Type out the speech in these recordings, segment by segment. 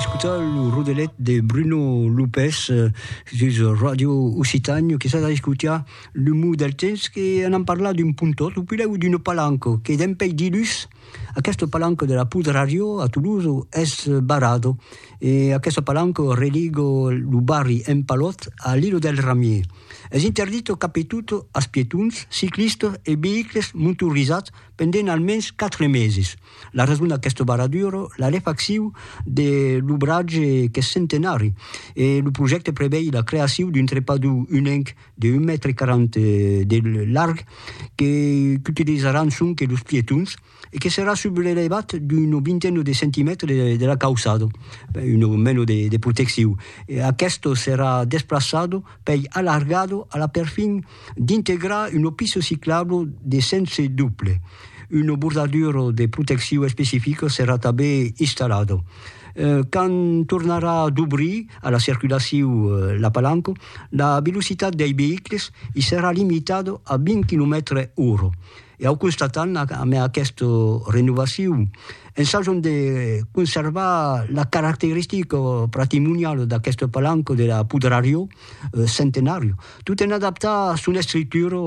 escutar lo rodelet de Bruno Lopez eh, sus Radio Occitània, que s'ha escutar le mot del temps que an en parlat d'un puntot, o pileu d'una palanca, que dempei dilús, aquesta palanca de la Poud Radio a Toulouse es barrada, e aquesta palanca religa lo barri Empalhòt a l'Îlot del Ramier. Es interdit cap e tot as pietons, ciclistas e veïcles motorizats, pendent almens quatre meses. La rason d'aqueste baraduro, la refaccion de l'obratge qu'es centenari e lo projècte prevei la creacion d'un trepador unenc de un mètre quaranta de larg que qu'utilizaràn sonque los pietons e que serà subrelevat d'una vintena de centimètres de la cauçada, ben una mena de proteccion. Aqueste serà desplaçat pei alargado a la perfin d'integrar un opiso ciclablo de sense doble. Un bordaduro de protecciu especifico serà tanben installado. Quand tornarà dobrir a la circulaciu la palanco, la velocitat dei veïcles i serà limitado a 20 quilomètres ora. E au constatam amé aquesta renovaciu, ensajam de conservar la caracteristica patrimoniala d'aquesta palanca de la Pudrariò, Centenàriu, tot en adaptar son estructura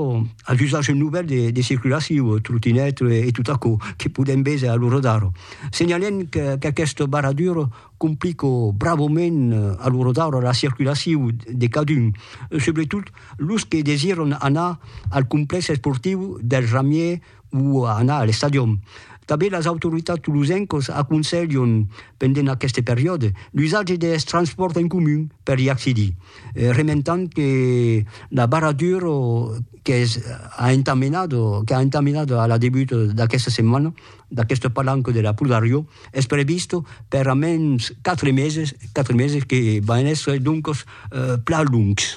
a l'usatge novèl de circulacion, trotinèt e tot aquò que podèm véser a lo radar. Senhalèm qu'aquesta barradura complica bravament a lo radar la circulacion de cadun, subretot los que desiran anar al complèx esportiu del Ramièr o a anar a l'estadion. Tanben las autoritats tolosencas aconselhan, pendent aqueste periòde, l'usatge deth transpòrt en comun per i accedir, rementant que la barradura qu'es a entamenat qu'a entamenat a la debuta d'aquesta setmana d'aquesta palanca de la Pudariò es prevista per a mens quatre meses, quatre meses que van èster doncas plan longs.